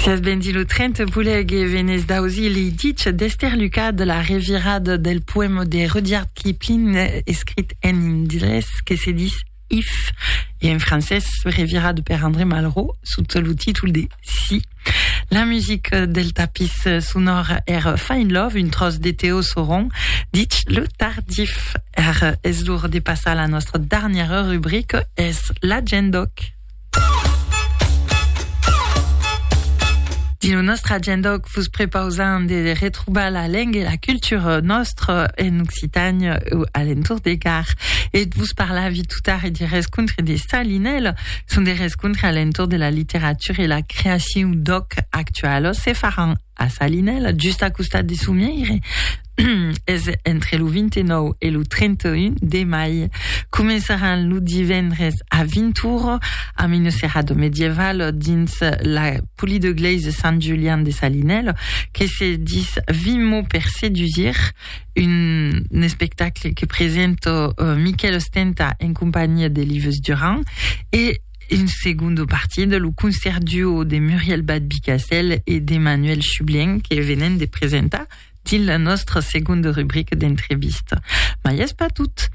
Siás bendit lo 30 Pulèr que venés d'ausir lei dich d'Èster Lucas de la revirada del poèma de Rudyard Kipling escrit en indrés que se dis If e en francés revirada per André Malraux sota lo títol de Si. La musica del tapís sonòr èra Find Love, un tròç de Teo Sauron, dich lo tardif. Ara es lor de passar a la nòstra darnièra rubrica, es l'Agendòc. Dins nòstre agenda òc vos prepausam de retrobar la lenga e la cultura nòstra en Occitània o alentour de Gard. E vos parlavi totara de rescontre de Salinèla. Son de rescontre alentour de la literatura e la creacion d'òc actualos se faràn A Salinèla, just a costat de Somièire, es entre lo 29 e lo 31 de mai. Començaràn lo divendres a 20 ora amb una serada medievale dins la Polydegleise Sant Julian de Salinèla que se dis 20 mots per sedusir, un espectacle que presenta Miquèl Ostenta en companhiá d'Eliveuse Durand e un segundo partit, lo concert duo de Muriel Bad-Bicassel e d'Emmanuel Chublien que venen de presentar dins la nostra segonda rubrica d'entrevista. Ma i es pas tot.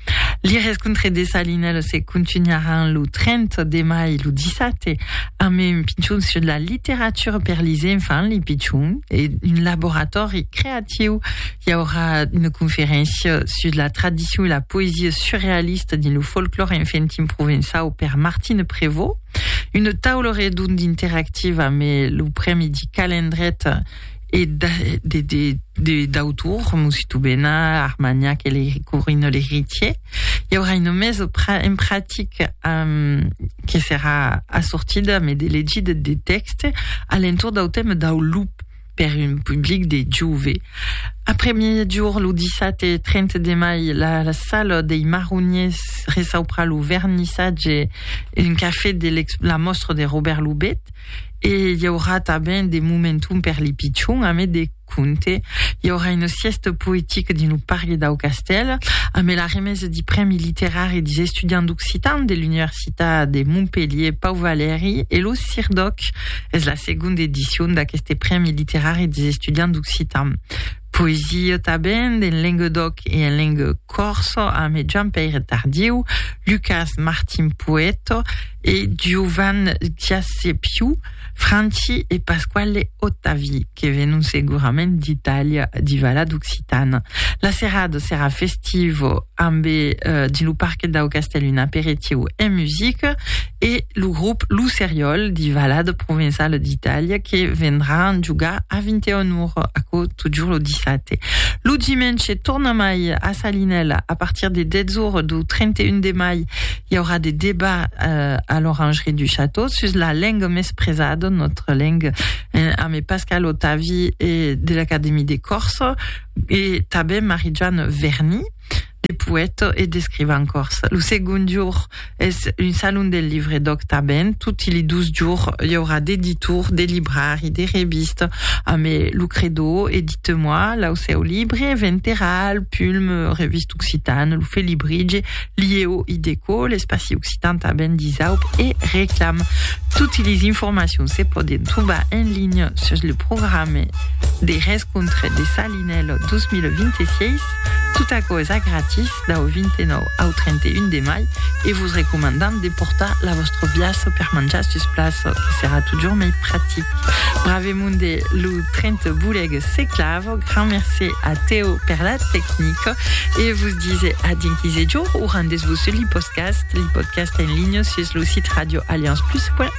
Li rescontre de Salinel se continuaràn lo 30 de mai lo dissabte amb un pichon sur la literatura per lis enfants, li pichons, e un laboratori creatiu l'estiu i aurà una conferéncia sus la tradicion e la poesia surrealista dins lo folclòr enfantin provençau per Martine Prévost. Una taula redonda interactiva amb lo Prèmi di Calendret e d'autor, Mosito Bena, Armagnac e le Corino l'Heritier. Hi aurà una mesa en pratic um, que serà assortida amb de legida de texte a l'entorn del tema del loup. per un public de jove. Après-miejorn, lo dissabte 30 de mai, la sala dei Marroniers reçaupra lo vernissatge Un café de la mòstra de Robert Lubet e i aurà tanben de momentum per li pichon, a mai de conte. I aurà una siesta poetica dins lo parc dau castèl, a mai la remesa di prèmi literari dis estudiants d'occitan de l'Universitat de Montpelhier Pau Valeri e lo Sir Doc. Es la segonda edicion d'aqueste Prèmi Literari des Estudiants d'Occitan. Poesia tanben en lenguedoc e en lengue còrsa amb Jean-Pèire Tardieu, Lucas Martin Poèto e Giovan Giasepiu, Franci e Pasquale Ottavi, que venon segurament d'Itàlia, d'i Vala d'Occitan. La serada serà festiva amb, dins lo parquet dau castèl, un aperitiu e musica. e lo grop Lo Seriòl de Valade Provençale d'Itàlia que vendràn jogar a 21 ora, aquò totjorn lo dissabte. Lo dimenge tornamai a Salinèla a partir de 10 ora dau 31 de mai i aurà de debat a l'Orangerie du Château sus la lenga mespresada, notre langue, amé Pascal Otavi e de l'Académie de Corse e tanben Marie-Joanne Verny. de poèta e d'escrivan còrse. Lo segond jorn es un salon del livre d'òc tanben. Toti li dos jorns i aurà d'editor, de librari, de revista, amé lo credò Edite-moi, lo seu libre, Venteral, Pulm, Revista Occitane, lo Felibritge, Lieu i Déco, l'espaci occitan tanben disaup e reclam. Toti lis informacions se pòden trobar en linha sus lo programe de rescontre de sa En el 2026, tot aquò es a gratis dau 29 au 31 de mai e vos recomandam de portar la vòstra biaça per manjar sus plaça, que serà totjorn mei practic. Bravemunde, lo tren te boleg se clava. Grand mercé a Teo per la tecnica e vos dise a dinc 15 jorn o rendetz-vos sus l'ipodcast, l'ipodcast en linha sus lo sit radioallianceplus.fr.